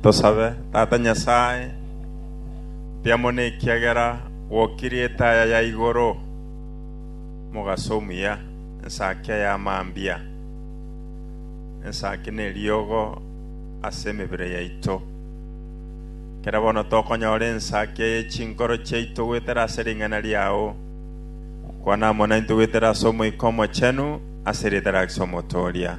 Tosabe. Tata Nyasae, mbiamo nekiagera gwokirie etaya ya igoro mogaso omuya, ensaki aya amambia, ensaki neriogo ase emebere yaito. Kera bono tokonyora ensaki eye chinkoro chiaito goetera ase ring'ana riao, kwana amo naintwe goetera ase Omoika Omochenu, ase erieta riao Kristo Omotoria.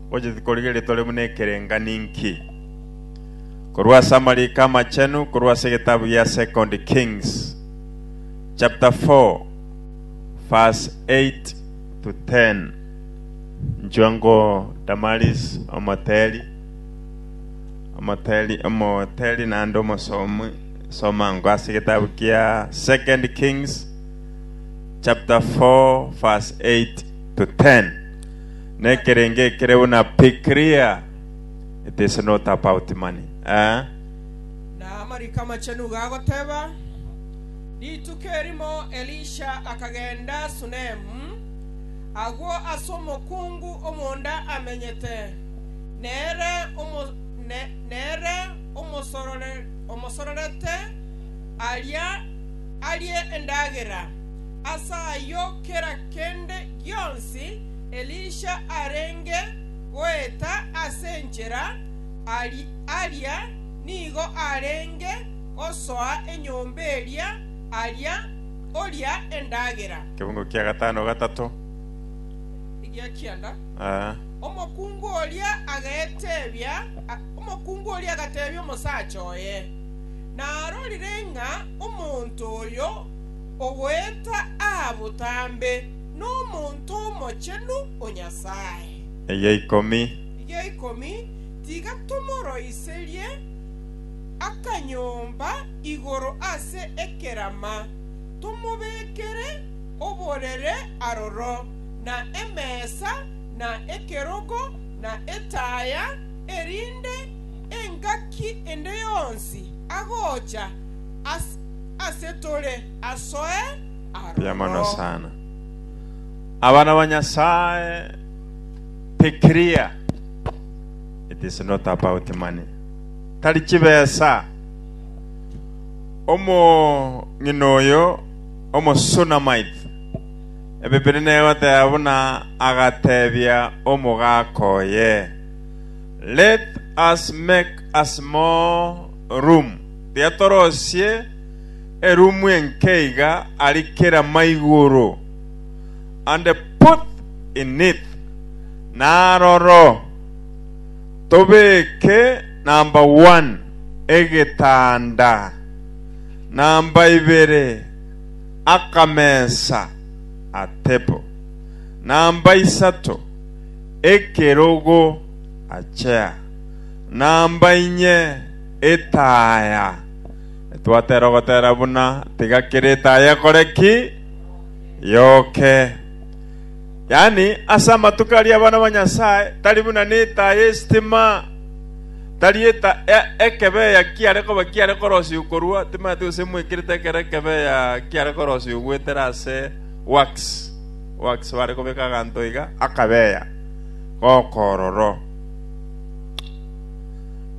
Gocha tikorigia ritore buna ekerengani inki? Korwa ase amariko amachenu korwa ase egetabu gia Second Kings chapter 4 verse 8 to 10. Nchwa ngo Damaris omoteri omoteri omoteri naende omosomi soma ngo ase egetabu kia Second Kings chapter 4 verse 8 to 10. nekerenge ekere buna be clear it is not about money eh? Na amariko amachenu gagoteba, Rituko erimo Elisha akagenda Sunemu, agwo ase omokungu omonda amenyete, nere omo, ne, nere omosorore, omosororete aria arie endagera. Ase ayio kera kende gionsi Elisha arenge goeta ase enchera, aria nigo arenge gosoa enyomba eria aria oria endagera. Kebungo kia gatano gatato. Egia kianda. Omokungu oria agetebia, omokungu oria agatebia omosacha oye narorire ng'a omonto oyo Ogoeta aa botambe nomonto omochenu o Nyasae. Eya ikomi. Eya ikomi, Tiga tomoroiserie akanyomba igoro ase ekerama, tomobekere oborere aroro, na emesa, na ekerogo, na etaya, erinde engaki ende yonsi agocha ase tore asoe Mbuya mono aroro. sana. Abana ba Nyasaye, be clear. It is not about money. Tari chibesa. Omong'ina oyo, omosunamite, ebeberi negoteba buna agatebia omogaka oye, Let us make a small room riatorosie erumu enke iga ari kera maigoro, and put in it, na aroro tobeke number one egetanda, number ibere akamesa, a table, number isato ekerogo, a chair, number inye Etaya. Twatera ogotera buna, tiga kera etaya ekore ki? Yoke. Yaani, ase amatuko aria abana ba Nyasae tari buna netaya y'esitima, tari eta e- ekebeya kiare koba kiare korosiu korwa, timanyeti gose mwekerete ekero ekebeya kiare korosiu goetera ase wax, wax bare kobeka aganto iga, akabeya gokororo.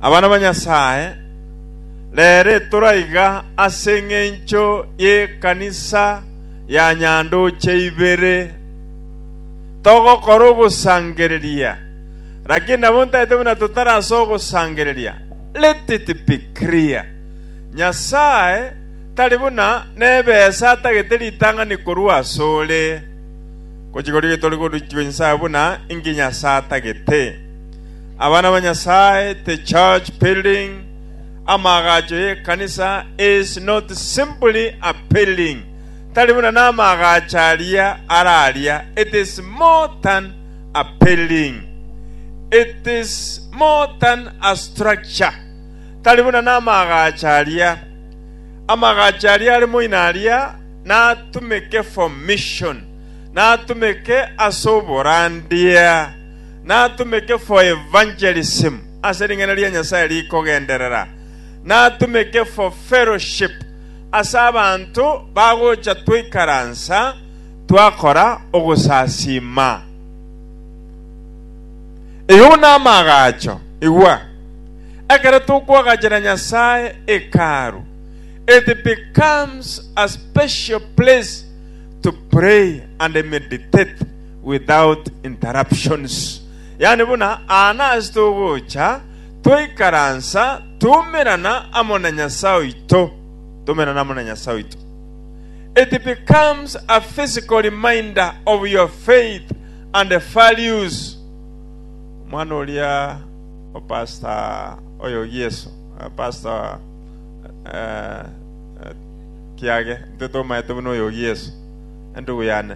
Abana ba Nyasae, rere toraiga ase engencho y'ekanisa ya nyandoche ibere, togokora ogosangereria, lakini nabo ntaete buna totarasoe ogosangereria. Let it be clear, Nyasae tari buna nebesa atagete ritang'ani korwa asore, gochia korigia tore korichua Nyasae buna inki Nyasae atagete. Abana ba Nyasaye, the church building, amaagacho y'ekanisa is not simply a building, tari buna n'amaagacho aria are aria, it is more than a building. It is more than a structure. Tari buna n'amaagacho aria. Amaagacho aria are moino aria natumeke for mission, natumeke ase oborandia. Natumeke for evangelism, ase ring'ana ria Nyasae rikogenderera. Natumeke for fellowship, ase abanto bagocha twaikaransa twakora ogosasiima. Eyio namaagacho. Igwa, ekero tokoagachera Nyasae Hekalu, it becomes a special place to pray and meditate. without interruptions. Yaani buna aa nase togocha twaikaransa twaumerana amo na Nyasae oito, twaumerana amo na Nyasae oito. It becomes a physical reminder of your faith and values. Omwana oria o pastor oyo Gieso, eh, pastor eh, eh, kiage, intwe tomaete buna oyo Gieso, endugu yane.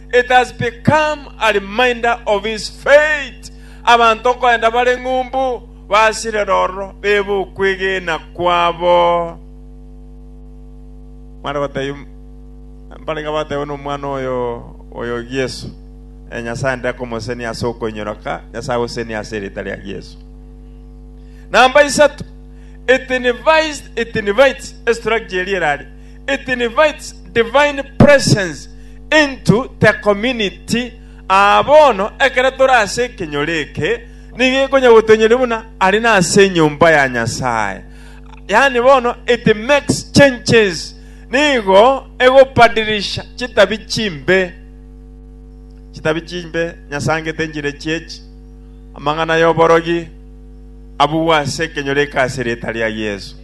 It has become a reminder of his faith, abanto nkoenda bare ng'umbu basirere ororo bebe okwegena kwabo. Mware gotebia mbaraiga batebiwe nomwana oyo oyo Yesu, eh, Nyasae nde komosenia ase okoinyoroka Nyasae agosenia ase erita ria Yesu. Namba isato, it invites, it invites a structure eria erare It invites divine presence into the community. Aa bono ekero tore ase ekenyoro eke nigo ekonya gotoinyoria buna aria nase enyomba ya Nyasae. Yaani bono it makes changes. Nigo egobadilisha chitabi chimbe. Chitabi chimbe nyasangete enchire chiechi. Amang'ana y'oborogi abugwe ase ekenyoro eke ase erieta ria Yeso.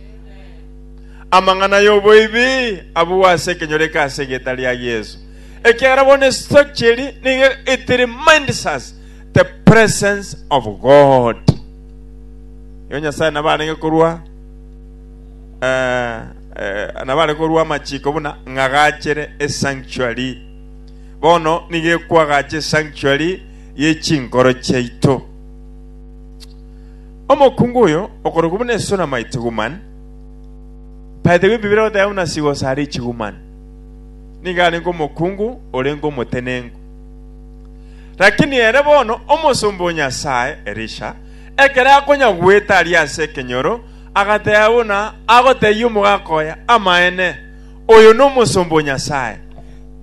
Amang'ana y'oboibi abugwe ase ekenyoreke ase erieta ria Yeso, ekiagera bono esitaki cheri nigo it reminds us the presence of God. Igo Nyasae nabo arenge korua eh, eh, nabo arenge korua amachiko buna ng'agachere esanctuary. Bono nigo ekwagacha esanctuary ye chinkoro chiaito. Omokungu oyo okorokwa buna Esunamite woman By the way, Bibilia egoteba buna sigoso are chigumani, nigo arenge omokungu orenge omotenenku. Lakini ere bono omosomba o Nyasae Elisha, ekero akonya goeta aria ase ekenyoro, agateba buna agotebia omogaka oye, Amaene, oyo nomosomba o Nyasae.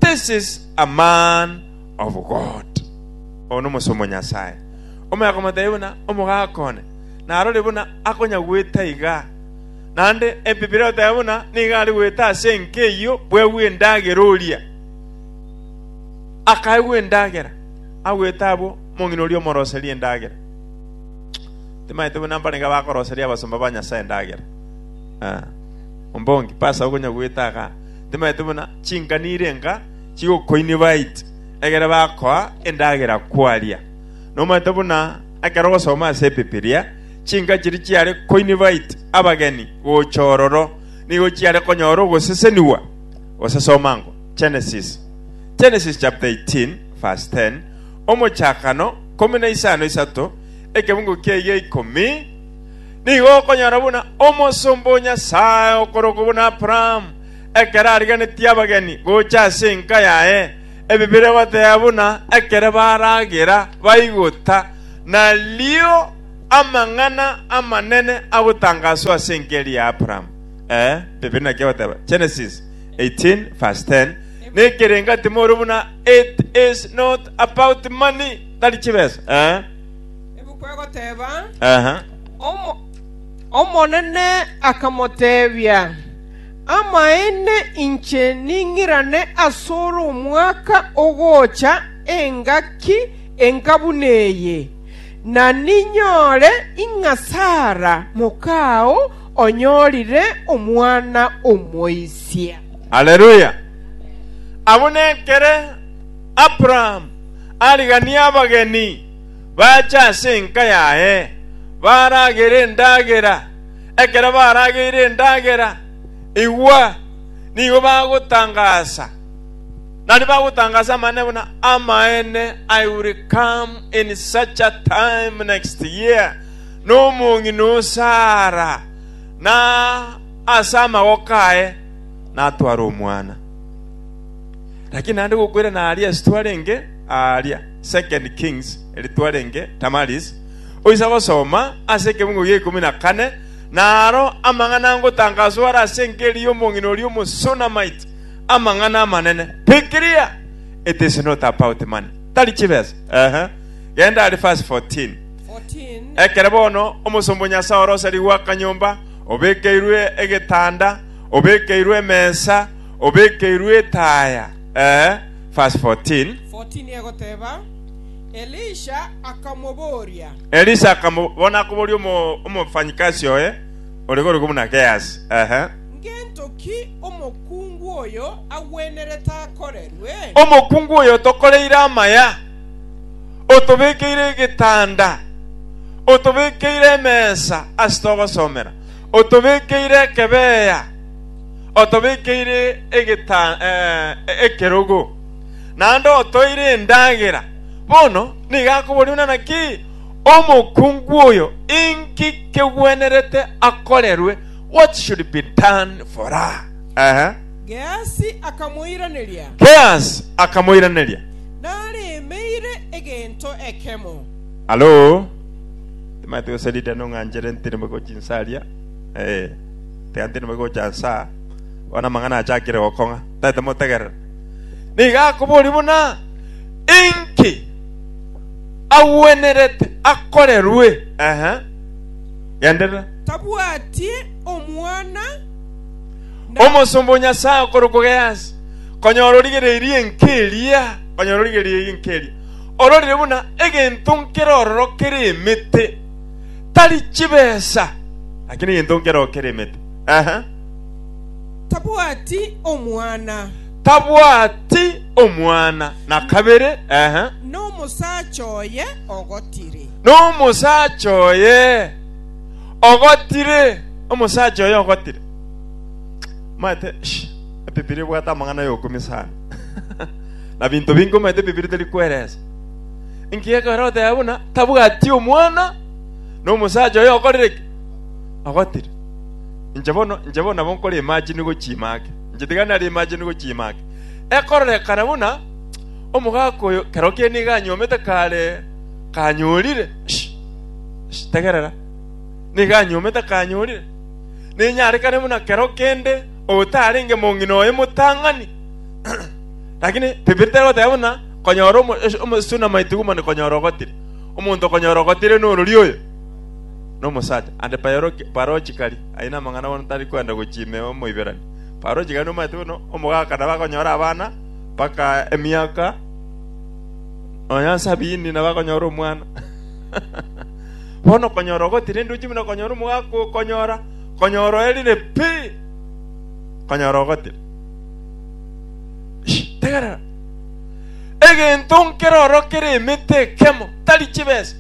This is a man of God. Oyo nomosomba o Nyasae. Omoya komotebia buna, Omogaka one, narore buna akonyagwete aiga. Naende Ebibiri egoteba buna nigo are goeta ase enka eyio bwegwe endagera oria. Akaegwa endagera, agwete abwo omong'ina oria omoroserie endagera. Timaete buna mbarenge abakoroseria abasomba ba Nyasae endagera. Ah. Ombongi, pasa okonyagwete aga. Timaete buna chingani ire enka chigokoini baiti, egere bakoa endagera kwaria. Nomaete buna Ekero ogosoma ase Ebibilia, chinka chiria chiare koinvite abageni gocha ororo nigo chiare konyora ogosesenigwa. Gose soma ango Genesis, Genesis chapter 18 verse 10, Omochakano ikomi na isano isato, ekebungo kiaye ikomi, nigo okonyora buna omosomba o Nyasae okorokwa buna Abraham, ekero arigenetie abageni gocha ase enka yaye, Ebi bire goteba buna ekero baragera baigota nario amang'ana amanene agotangaswa ase engeri ya Abraham. Ee, ebi bire naki agoteba, Genesis 18:10, Nekerengo ati more buna it is not about money, tari chibesa. Ee. Ebi kwegoteba, Omonene akamotebia, “Amaene inche ning'irane asore omwaka ogocha engaki enka buna eye, na ninyore ing'a Sara mokao onyorire omwana omoisia.” Haleluya! Abwo nekere Abraham ariganie abageni bache ase enka yaye, baragere endagera. Ekero barageire endagera, igwa, nigo bagotangaasa, naende bagotangaasa amang'ana buna amaene, I will come in such a time next year, na omong'ina o Sara, na ase amagoko aye natware omwana. Lakini naende gokoirana aria ase twarenge aaria, 2 Kings, eri twarenge Tamaris, Oise agosoma ase ekegungo gia ikomi na kane, na aro amang'ana ngotanga asore ase enkeri y'omong'ina oria Omosunamite, amang'ana amanene, Fikiria! It is not about money. Tari chibesa. Ehe. Genda are verse 14. 14 Ekere bono omosomba o Nyasae oroserigwe akanyomba, obekeirwe egetanda, obekeirwe emesa, obekeirwe etaya. Ehe. Verse 14. 14 egoteba Elisha akamobooria. Elisha akamo, bono akobooria omofanyikasi oye ore korokwo buna Gehasi, ehe. Ngento ki omokungu oyo agwenerete akorerwe? Omokungu oyo otokoreire amaya, otobekeire egetanda, otobekeire emesa ase togosomera, otobekeire ekebeya, otobekeire egeta, eh, ekerogo. naende otoire endagera, bono nigo akoboria buna naki omokungu oyo inki kegwenerete akorerwe, what should be done for her. Ehe. Gehasi akamoiraneria, Gehasi akamoiraneria, Naremeire egento ekemo. Alo, timanyete gose Lydia nong'anchere ntiri mobe gochia inse aria, ee, tiga ntiri mobe gocha inse aa, bono amang'ana aachakire gokong'a, tataete motegerera. Nigo akoboria buna inki agwenerete akorerwe. Ehe, genderera. Tabwati omwana, na Omosomba o Nyasae okorokwa Gehazi, konyora origereirie enka eria, konyora origereirie enka eria, ororire buna egento nkere ororo kere emete, tari chibesa, lakini egento nkere ororo kere emete. Ehe. Tabwati omwana. Tabwati omwana, na kabere, ehe. Nomosacha oye ogotire. Nomosacha oye ogotire. Omosacha oye ogotire. Maete, shh, Ebibilia ebwate amang'ana ay'okumi sana. na binto binge omaete Ebibilia teri kweresa. Inki ekero oteba buna tabwati omwana, nomosacha oye okorire ki? Ogotire. Inche bono, inche bono nabo nkore emachenu igwe chiima ake. Inche tiga nare emachenu igwe chiima ake. Ekororekana buna omogaaka oyo kero kere nigo anyuomete kare kanyorire. Tegerera. Nigo anyuomete kanyorire. Ninyarekane buna kero kende otarenge mong'ina oye motang'ani. Lakini Bibilia terigoteba buna konyora omo, omo, suna maitigu mane konyora ogotire. Omonto okonyora ogotire norori oyo. nomosacha, aande Paroki, Parochi kari, aye namang'ana bono tari kwenda gochia ime Omoiberania. Parochi kari nomanyete buna omogaka nabakonyora abana mpaka emiaka nonya nsabini nabakonyora omwana. Bono okonyora ogotira enduchi buna konyora omogaka oo konyora konyora oerire pi konyora ogotira. Ishi, tegerera. Egento nkere oro kere emete ekemo, tari chibesa.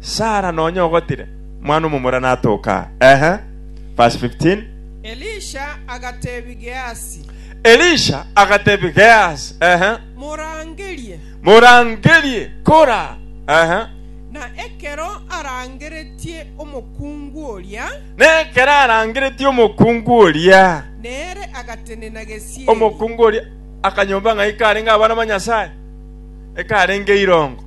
Sara nonya ogotire mwana omomura natoka aa. Ehe. Verse 15. Elisha agateebia Geasi, Elisha agatebia Geasi, Ehe. Morangerie. Morangerie, kora. Ehe. Na ekero arangeretie omokungu oria, Na ekero arangeretie omokungu oria, nere agatenena gesieri. omokungu oria akanyomba ng'a ikarenge abana ba Nyasae, ekarenge irongo.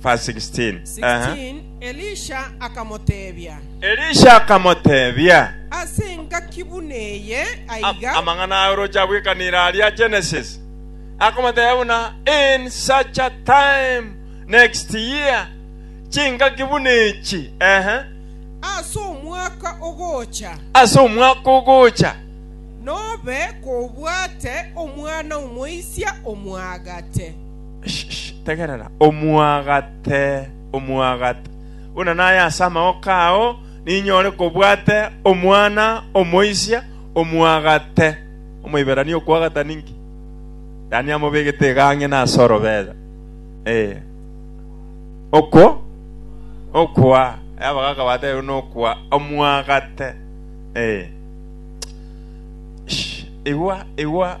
Verse 16. Aha. 16 Elisha akamoteebia, Elisha akamoteebia, Ase engaki buna eye "Am- aiga amang'ana aye oroche abwekanire aria Genesis, akamotebia buna in such a time next year, chingaki buna echi, ehe, ase omwaka ogocha, ase omwaka ogocha, nobe kobwate omwana omoisia omwagate. Tegerera, omwagate, omwagate, buna naye ase amagoko ao ninyore kobwate omwana omoisia, omwagate. Omoiberania okwagata ninki? Yaani amobegete egang'ina ase orobera. Eh. Okwo? Okwa. Abagaka batebe nokwa. Omwagate. Eh. Igwa, igwa.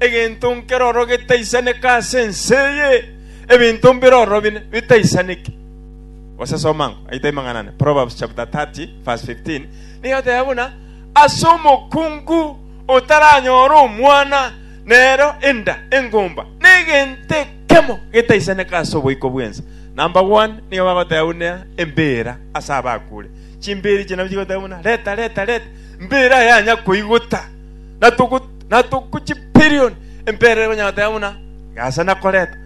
Egento nkeroro getaisaneka ase ense eye, ebinto mbiroro bine bitaisaneke. Gose soma ngo, aye taimang'ana ne Proverbs chapter 30 verse 15, nigo egoteba buna, ase omokungu otaranyore omwana, nero enda engumba negento ekemo getaisaneka ase oboiko bw'ense. Number one, nigo bagoteba buna embira ase abakure. Chimbiri echi nabwo chigoteba buna, reta, reta, reta, mbira yanya koigota. natogochipirioni embere banyateba buna gasa nakoreta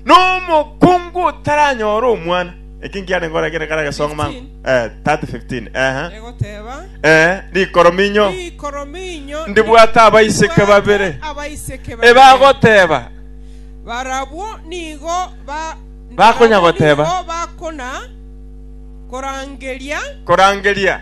nomokungu otaranyora omwana eki nkiane nkore kere kare gesonga mango 15. eh 30 15 eh egoteba eh rikoro minyo rikoro minyo Ndibwate abaiseke ndibwate babere. abaiseke babere. ebagoteba barabwo nigo ba- Bakonya barabwo goteba. nigo bakona korangeria korangeria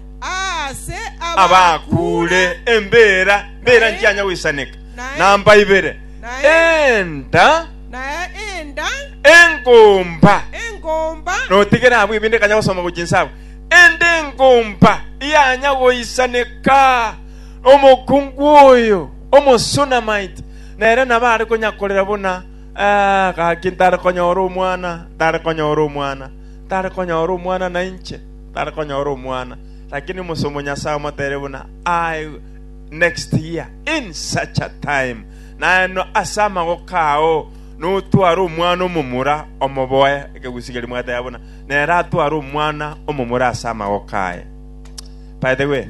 aase abakuure embeera mbeera nchianya goisaneka, namba ibere, enda engomba notigere abwo ebinde ekanya gosoma gochia inse abwo, enda engomba yanya goisaneka omokungu oyo omosunamite nere nabo are konyakorera buna ah, gaki ntare konyora omwana ntare konyora omwana ntare konyora omwana nainche tari konyora omwana, lakini omosomo Nyasae omotere buna aye next year in such a time naeno ase amagoko ao notware omwana omomura omoboe ekegusi keria mwateba buna nere atware omwana omomura ase amagoko aye by the way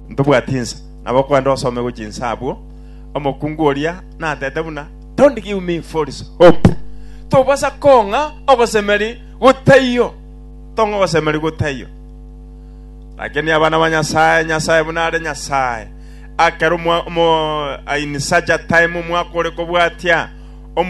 ntobwati insa nabo kwende osome gochi insa abwo omokungu oria natete buna don't give me false hope tobasa kong'a ogosemeri gotaiyo Tong'osemerigwa taiyo, lakini abana ba Nyasae, Nyasae buna are Nyasae. Akero omo, omo, in such a time omwaka ore kobwatia,